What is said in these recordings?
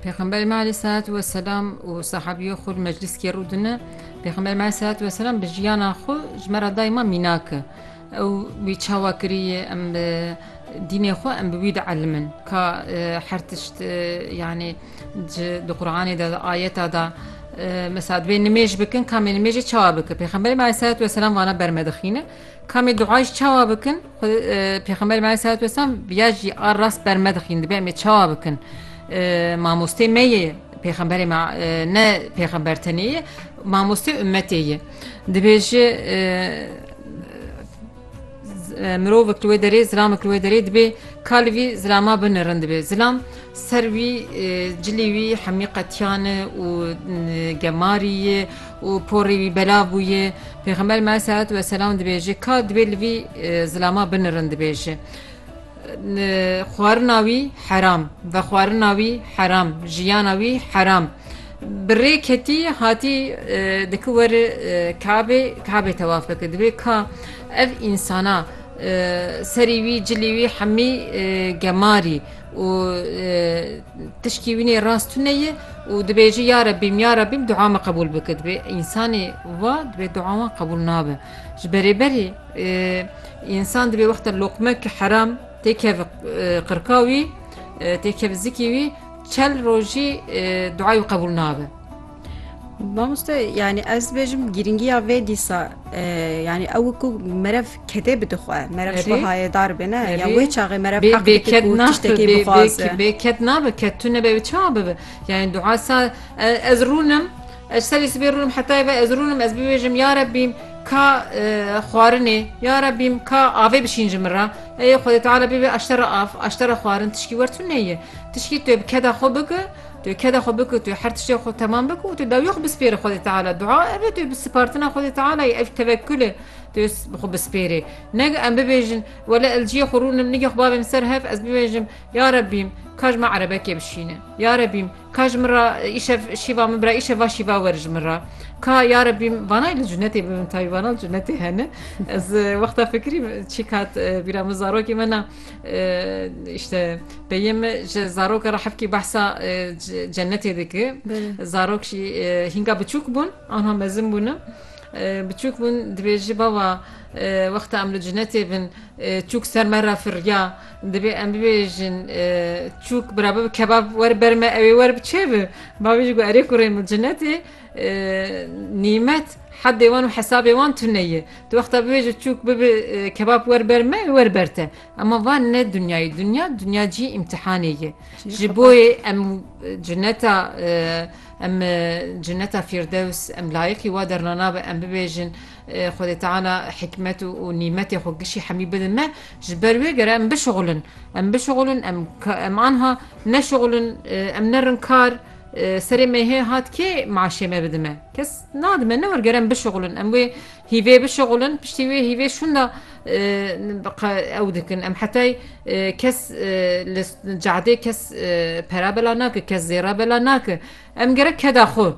Pêxemberê me aleyh selat we selam û sahabîyo xwe li meclîskê rû dine. Pêxemberê me aleyh selat we selam bi jiyana xwe ji me re dayê me mînak e. Ew wî çawa kiriye em bi dînê xwe em bi wî de elimin. Ka her tişt yanî di Quranê de di ayeta de mesela divê nimêj bikin kamê nimêjê çawa bikin. Pêxemberê me aleyh selat we selam vana ber me dixîne. Kamê dua jî çawa bikin? Pêxemberê me aleyhissalatu vesselam ya jî a rast ber me dixîn dibe em ê çawa bikin? Mamostê me yê pêxemberê me ne pêxember tenê yê mamostê ummetê yê. Dibêje mirovek li wê derê zilamek li wê derê dibê ka li vî zilama binirin dibê. Zilam ser wî cilî wî hemî qetiyane û gemarî ye û porê wî belav bûye, Pêxember me selat we selam dibêje ka dibê li vî zilama binirin dibêje xwarina wî heram, vexwarina wî heram, jiyana wî heram. Bi rê ketî hatî diki weri Kabê Kabê tewaf bike dibê ka ev însana serî wî cilî wî hemî gemarî û Tişkî wînê rast tune ye û dibêjî ya Rebîm ya Rebîm dua me qebûl bike. Dibê însanê va dibê dua wan qebûl nabe. Ji berê berê însan dibê wexta loqmek heram têkev qirka wî têkev zikî wî çel rojî duayê wî qebûl nabe. Mamoste yani ez bêjim girîngiya vê dîsa yani ew ku merev kedê bide xwe merev ji bo hayedar be ne ya wê çaxê merev bê ket nabe ket tu nebe wê çawa bibe yani duasa ez rûnim ez serê sibê rûnim hetayê ve ez rûnim ez bibêjim ya rebî ka xwarinê ya rebî ka avê bişîn ji min re ê xwedê teala bibê eştera av eştera xwarin tişkî wer tu neyê tişkî tu bi keda xwe bike Tu keda xwe bik û tu her tiştê xwe temam bik û tu dawiyê xwe bispêre Xwedê Teala. Dua ev e tu bi sipartina Xwedê Teala ye, ev tevekul e tu bi xwe bispêrê. Neg em bibêjin, wele ez ciyê xwe rûnim nigê xwe bavêm ser hev ez bibêjim, Ya Rebîm ka ji min erebekê bişîne. Ya Rebîm ka ji min re îşev şîva min bira îşev va şîva were ji min re. Ka Ya Rebîm vanayê li cunetê bibim tayî vana li cunetê hene. Ez wexta fikirîm çîk hat bîra min zarokê me na. işte peyim ji zaroka re hevkî behsa cennetê dike zarok jî hînga biçûk bûn anha mezin bûne biçûk bûn dibêjî bava wexta em li cennetê bin çûk ser me re firya dibê em bibêjin çûk birabi kebab wer ber me ewê wer bi çê bi bavê jî got erê kurê min cennetê Nîmet hedê wan û hesabê wan tune ye. Tu wexta bibêje çûk bibe kebab wer ber me ê wer ber te. Ema van ne dinyayê. Dinya dinya cî îmtîhanê ye. Ji bo yê em cineta em cineta fîrdews em layiqî wa derna nabe em bibêjin Xwedê Teala hikmet û nîmetê xwe gişî hemî bide me. Ji ber wê gere em bişuxulin. Em bişuxulin em em anha neşuxulin em nerin kar. Serê mêhê hat kê meaşê me bidime? Kes nadime ne werger em bişuxulin. Em wê hîvê bişuxulin piştî wê hîvê şûnda ew dikin. Em hetay kes li cadê kes pera bela nake, kes zêra bela nake. Em gerek keda xwe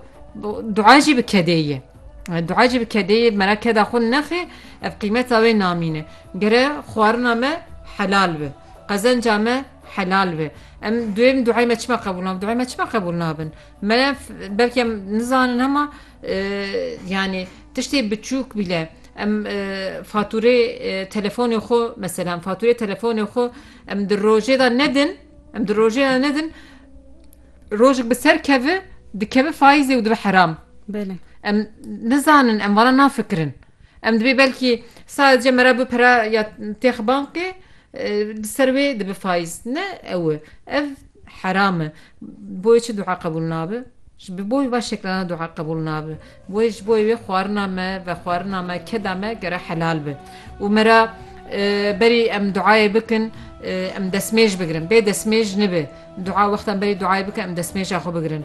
dua jî bi kedê ye. Dua jî bi kedê ye mera keda xwe nexê ev qîmeta wê namîne. Gere xwarina me helal bi. Qezenca me helal be. Em duêrn duayê me çima qebûl nabin? Duayê me çima qebûl nabin? Me belkî em nizanin hema yanî tiştê biçûk bîle em fatûrê telefonê xwe mesela fatûrê telefonê xwe em di rojê de nedin em di rojê de nedin rojik bi ser kevi dikeve faîzê û dibe heram. Belê. Em nizanin em vana nafikirin. Em divê belkî sadece me re bi pere ya têx bankê li ser wê dibe faiz. Ne ew e. Ev heram e. Bo yê çi dua qebûl nabe? Ji bo wê van şekilanan dua qebûl nabe. Wê ji bo wê xwarina me, vexwarina me, keda me gere helal be. Û me re berî em duayê bikin em destmêj bigirin. Bê destmêj nibe. Dua wextan berî duayê bikin em destmêja xwe bigirin.